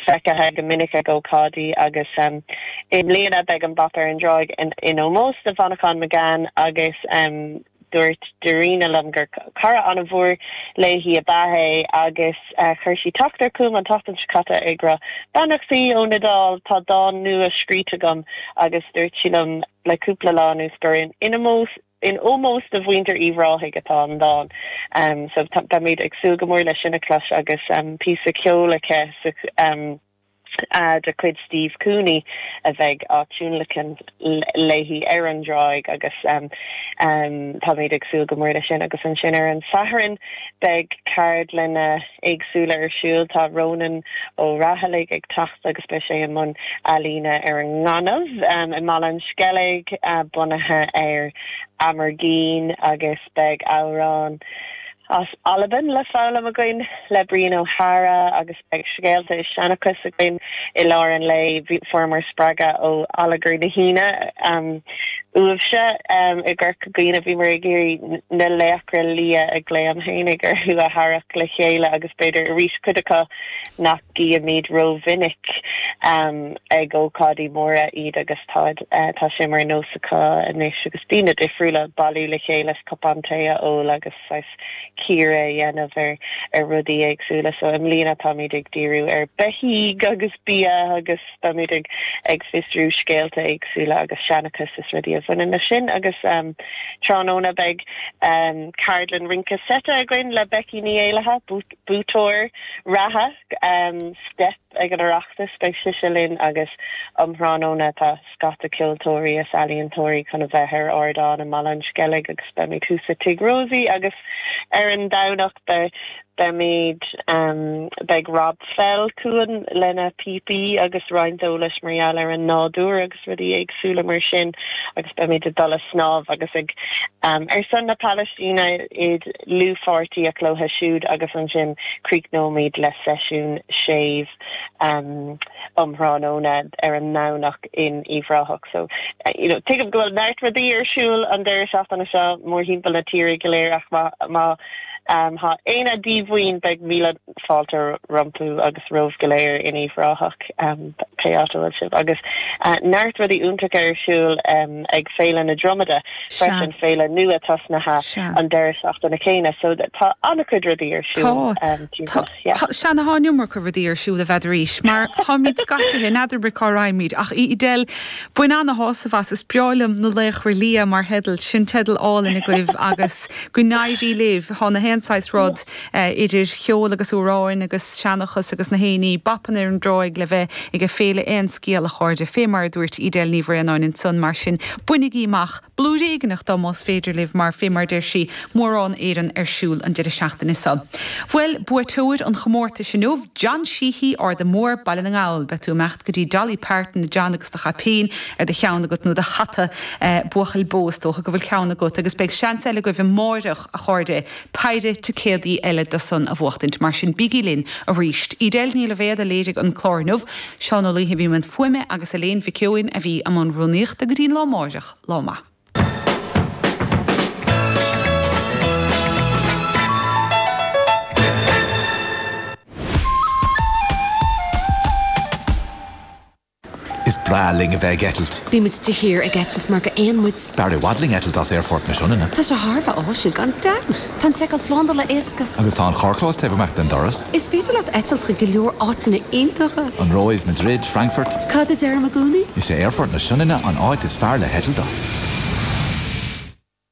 feicthe go minic ag ócáidí agus i mbliana beidh an babhta ar an dtráigh in ómós do Mhanchán Magan agus dúirt Dairena liom gur cara an-mhór léi ab ea é agus chuir sí teachtaireacht chugam an tseachtain seo caite ag rá beannachtaí ón Iodáil, tá dán nua scríte agam agus dúirt sí liom le cúpla lá anuas gur in ómós. In ómós do mhuintir Uíbh Ráthaigh atá an dán so. Beimid ag súil go mór le sin a chlos agus píosa ceoil aici de chuid Steve Cooney a bheidh á tionlacan léi ar an dtráigh agus táimid ag súil go mór le sin. Agus ansin ar an Satharn beidh ceardlanna. éagsúla ar siúl. Tá Rónán Ó Raghallaigh ag teacht agus beidh sé i mbun ealaíne ar an ngaineamh i mBaile an Sceilg bunaithe ar Amergin agus beidh amhráin as Albain le foghlaim againn le Brian Ó hEadhra agus beidh scéalta is seanchas againn i lár an lae. Fuaireamar spreagadh ó Allagar na hAoine. Uaibhse i gCorca Dhuibhne bhíomar ag iarraidh na laochra liath a ghlaoim féinig orthu a tharrac le chéile agus b'fhéidir arís cuid acu nach gcímid rómhinic ag ócáidí móra iad agus tá, tá sé mar nós acu anois agus daoine difriúla ag bailiú le chéile is cupán tae a ól agus. saghas cíoradh a dhéanamh ar rudaí éagsúla. So i mbliana táimid ag díriú ar beithígh agus bia agus táimid ag ag fiosrú scéalta éagsúla agus seanchas is rudaí a bhaineann leis sin. Agus um tráthnóna beidh um ceardlann rince seite againn le Becky Ní Éallaithe, buaiteoir reatha um Steip. Ag an Oireachtas, beidh sise linn agus um thráthnóna tá scata ceoltóirí is ealaíontóirí chun a bheith ar ardán i mBaile an Sceilg agus beimid thuas i Tigh Rosie agus ar an Domhnach beimid, beidh Rob Fell chugainn lena phíopaí agus roinnt eolais mar gheall ar an nádúr. rudaí éagsúla mar sin agus beimid ag dul ag snámh agus ag Ar son na Palaistíne i dlúthpháirtíocht leo siúd agus ansin críochnóimid le seisiún séimh um thráthnóna ar an nDomhnach in Uíbh Ráthach so you know tuigim go bhfuil neart rudaí ar siúl an deireadh seachtaine seo mórthimpeall na tíre go léir ach má tá éinne díomhaoin beidh míle fáilte rompu agus romhaibh go léir in Uíbh Ráthach, pé áit a bhfuil sibh, agus neart rudaí iontacha ar siúl ag Féile na Dromada Sea. freisin, féile nua tosnaithe Sea. an deireadh seachtaine céanna, so tá an-chuid rudaí ar Tá. siúl Tá. timpeall, yeah. Tá. Sea, tá an iomarca rudaí ar siúl, b'fhéidir arís, mar táimid scaipithe, n'fheadar mé cá raghaimid, ach Edel, bain an-shásamh as, is breá liom Na Laochra Liath mar theideal, sin teideal álainn agaibh agus go n-éirí libh, thá na haon saghas rud, idir cheol agus amhráin agus seanchas agus na héinní, beifeann ar an dtráigh le bheith ag a' féile aon scéal a chairde, fé mar a dúirt Edel Ní Bhraonáin ansan, mar sin, bainigí amach blúire éigneach dó más féidir libh mar, fé mar deir sí, mórán éigin ar siúl an deire seachtaine so. Bhuel, buaiteoir an chomórtais inniu, John Sheehy, Arda Mór, Baile na nGall. Beidh tú ag imeacht go dtí Dolly Parton, a John, agus do chaipín ar do cheann agat, nó do hata, buachaill bó, is dócha go bhfuil ceann agat, agus beidh seans eile agaibh amáireach, a chairde, Péire ticéadaí eile dó san a bhuachtaint, mar sin bígí linn arís. Edel Ní Loibhéad a léirigh an clár inniu. Seán Ó Laoithe a bhí i mbun fuaime agus Elaine Mhic Eoin a bhí i mbun rúnaíochta. Go dtí an lá amáireach, lá maith. Is breá linn a bheith ag eitilt. Bíonn muid de shíor ag eitilt mar gur éin muid. B'fhearr i bhfad linn eitilt as Aerfort na Sionainne. Tá sé thar a bheith áisiúil, gan dabht. Tá an tseiceáil slándála éasca. Agus tá an carrchlós taobh amach den doras. Is féidir leat eitilt chuig go leor áiteanna iontacha. An Róimh, Madrid, Frankfurt. Cad a deirim i gcónaí? Is é Aerfort na Sionainne an áit is fearr le heitilt as.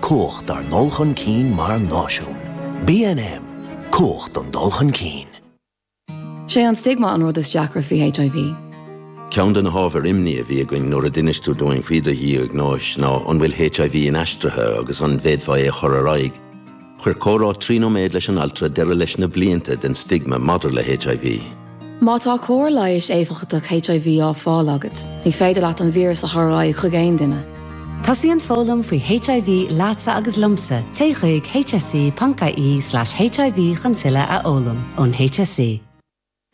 Cumhacht dár ndul chun cinn mar náisiún. BNM, Cumhacht don dul chun cinn. Sé an stigma an rud is deacra faoi HIV. Ceann de na hábhair imní a bhí againn nuair a d'inis tú dúinn faoi do dhiagnóis ná an bhfuil HIV inaistrithe agus an bhféadfá é a chur ar aghaidh. Chuir comhrá trí nóiméad leis an altra deireadh leis na blianta den stigma maidir le HIV. Má tá cóir leighis éifeachtach HIV á fáil agat, ní féidir leat an víreas a chur ar aghaidh chuig aon duine. Tosaíonn foghlaim faoi HIV leatsa agus liomsa, téigh chuig hse.ie/hiv chun tuilleadh a fhoghlaim ón HSE.